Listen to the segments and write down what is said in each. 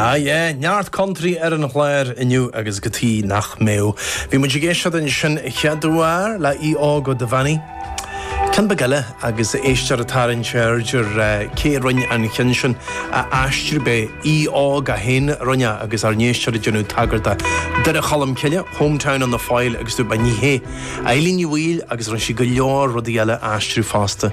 Ah yeah, neart country ar an chlár inniu agus cad chuige nach mbeadh. Bhí muid ag éisteacht ansin an chéad uair le Aodh Óg Ó Duibheannaigh. Ceann beag eile agus éisteoir ag tarraingt aird air cé a rinn an ceann sin a aistriú arbh é Aodh Óg é fhéin a rinn é agus ár n-éisteoir ag déanamh tagairt do Dhoire Cholm Cille, Hometown on the Foyle agus dúirt mé ní hé. Eileen Ní Bhaoill agus rinn sí go leor rudaí eile a aistriú fosta.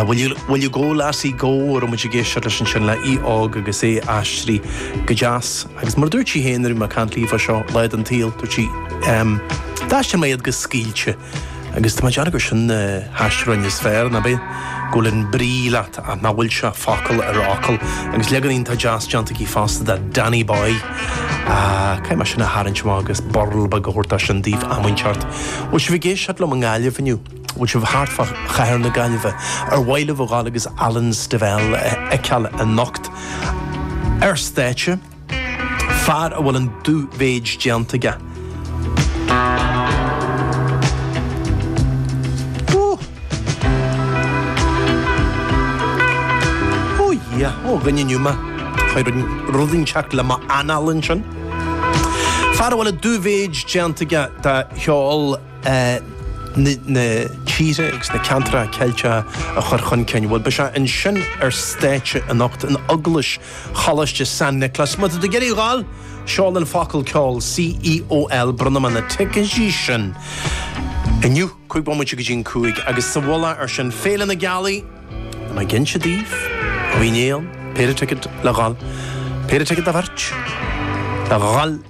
Will Ye Go Lassie Go a raibh muid ag éisteacht leis ansin le Aodh Óg agus é aistrithe go deas. Agus mar a dúirt sí féin nuair a bhí mé ag caint léi fá seo, lá den tsaol, dúirt sí, D'aistrigh mé iad go scaoilte. Agus tá mé ag déanamh gur sin na haistriúcháin is fearr, nach bhfuil? Go bhfuil an brí leat ach nach bhfuil sé focal ar fhocal. Agus leagan iontach deas déanta aici fosta de Danny Boy. Caithfidh mé sin a tharraingt amach agus birl beag a thabhairt dó sin daoibh am inteacht. Bhfuil sibh ag éisteacht liom i nGaillimh inniu? Bhfuil sibh thart fá chathair na Gaillimhe? Ar mhaith libh a dhul agus Alan Stivell a fheiceáil anocht ar stáitse? fear a bhfuil an dubh-mhéid déanta aige. Ó, Dhia, ó dhuine inniu mé. Chuaigh rud inteacht le m'anáil ansin. Fear a bhfuil an dubh-mhéid déanta aige do cheol eh, na na tíre agus na ceantracha Ceilteacha a chur chun cinn. Bhuel, beidh sé ansin ar stáitse anocht in Eaglais Choláiste San Niclas. Má tá tú ag iarraidh a ghabháil, seol an focal ceol, C-E-O-L, bronnfaidh mé na ticéidí sin inniu, cúig bomaite go dtí an cúig, agus sa mhullach ar sin, Féile na Gealaí, tá mé ag inse daoibh, Uí Néill, péire ticéad le dh'fháil, péire ticéad do bheirt le dh'fháil.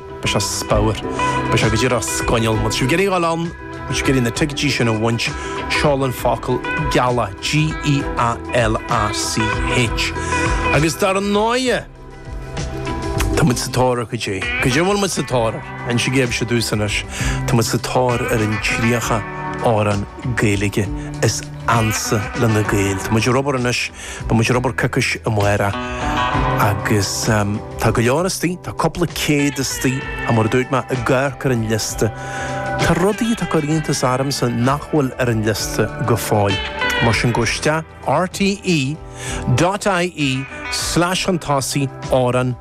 Beidh sé super. Beidh sé go díreach scoinneal. Má tá sibh ag iarraidh a dhul ann, má tá sibh ag iarraidh na ticéidí sin a bhaint, seol an focal gealach, G-E-A-L-A-C-H. Agus dar ndóighe, tá muid sa tóir ar goidé? Goidé a bhfuil muid sa tóir air? Insígí sibhse domhsa anois? Tá muid sa tóir ar an 30 amhrán Gaeilge is ansa le na Gaeil. Tá muid ar obair anois. Beidh muid ar obair coicís amárach agus tá go leor istigh, tá cúpla céad istigh, ach mar a dúirt mé, ag amharc ar an liosta, tá rudaí atá ag cur iontas ormsa nach bhfuil ar an liosta go fóill. Mar sin go isteach rte.ie/slashantosaí amhrán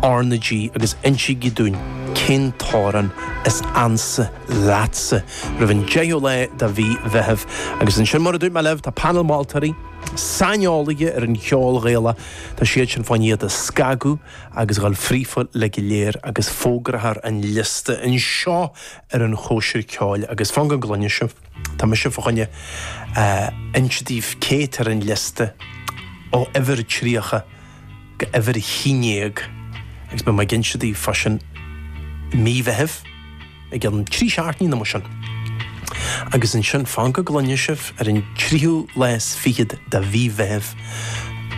RnaG agus insígí dúinn cén t-amhrán is ansa leatsa roimh an deichiú lá de mhí Mheithimh. Agus ansin, mar a dúirt mé libh, tá painéal moltóirí, saineolaithe ar an cheol Ghaelach, tá siad sin fá choinne iad a scagadh agus a dhul fríofa uilig go léir agus fógrófar an liosta anseo ar an Chóisir Ceoil agus fan go gcluine sibh, tá mise fá choinne a inse daoibh cé atá ar an liosta ó uimhir 30. go uimhir a haon déag agus beidh mé ag inse daoibh fá sin mí Mheithimh i gceann trí seachtainí nó mar sin. Agus ansin, fan go gcluine sibh, ar an tríú lá is fichead de mhí Mheithimh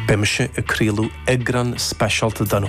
beidh mise ag craoladh eagrán speisialta den